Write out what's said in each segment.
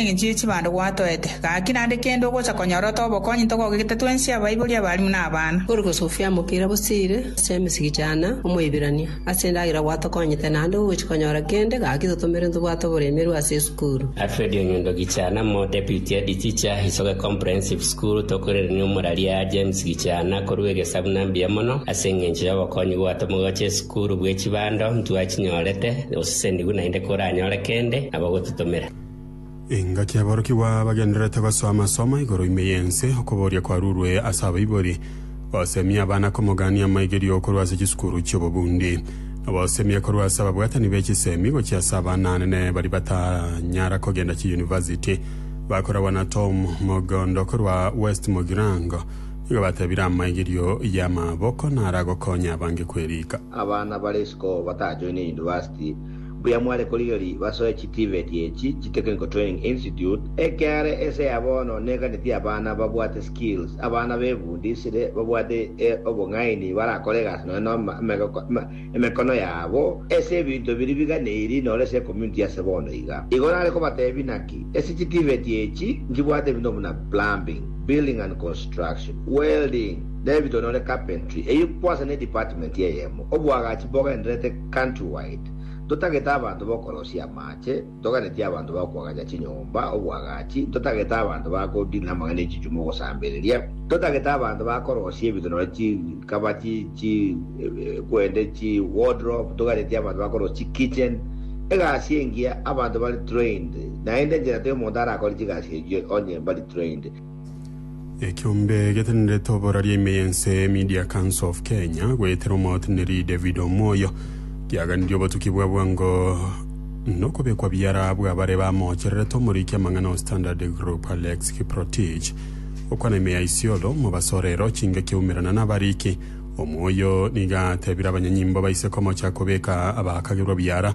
Engencho ye chibando gwatoete, gaki naende kende ogocha konyora ote obokonyi ntogogegete twensi abaibori, abalimu na abana. Ore gosofia amokira bosire ase emesegi chana Omoibirania, ase endagera gwatokonyete naende gogochi konyora kende, gaki totomere ntobwate oboremerwe ase esukuru. Alfred Onyondo Gichana mo Deputy Head Teacher, Isoge Comprehensive School, Tokoirerania omoraria James Gichana korua egesabu na mbuya mono ase engencho y'obokonyi gwato mogocha esukuru bwe chibando ntwachinyorete, osesenigu naende koranyore kende nabo gototomera. Engaki y'aborokigwa bagendererete gosoa amasomo igoro ime y'ense, okoboria kwarurwe ase abaibori, gosemia abana komogania amaigerio korwa ase chisukuru chi'obobundi, na gosemia korwa ase ababwatani be chisemi gochia ase abana anene baria batanyara kogenda chiyunivasiti. Bakoragwa na Tom Mogondo korwa West Mugirango nigo batebire amaigerio y'amaboko naragokonya abange kweriika. Abana bare isiko batajoine yunivasiti Mbuya mware korigeria basoe chitivet echi chi Technical Training Institute, ekiare ense ya bono neganeti abana babwate skills, abana befundisire babwate obong'aini barakore egasi nonya na emekono yabo ase ebinto biria biganeiri noro ase ecommunity yase bono iga. Igo nare kobatebia naki, ase chitivet echi nkibwate ebinto buna plumbing, building and construction, welding, david onore carpentry, eyio kwase ne department eyemo, oboagachi bogendererete. Countrywide, Ntotagete abanto b'okorosia amaache, ntoganetie abanto ba koagacha chinyomba, obwagachi, ntotagete abanto ba kodiina amang'ana e chichumi ogosambereria, ntotagete abanto ba korosia ebinto nonya chi kaba chi chi kwende chi wardrobe, ntoganetie abanto ba korosia chi kitchen, egasi engiya, abanto bari trained, naende enchera teomonto arakore chigasi echio onye mbari trained. Ekiombe getenerete oboraria ime y'ense Media Council of Kenya goetera omoteneri David Omoyo giaganirie obotuki bwa bwango nokobekwa biara bw'abare bamoochererete omoriki amang'ana o Standard Group Alex Kiprotich okwana ime ya Isiolo mobasorero chinga kiaumerana n'abariki Omoyo niga atebire abanyanyimbo baise komocha kobeka abakagerwa biara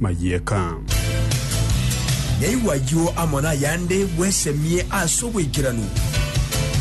mayieka. Naigwa ayio amo nayande, bwesemie ase obwaikeranu.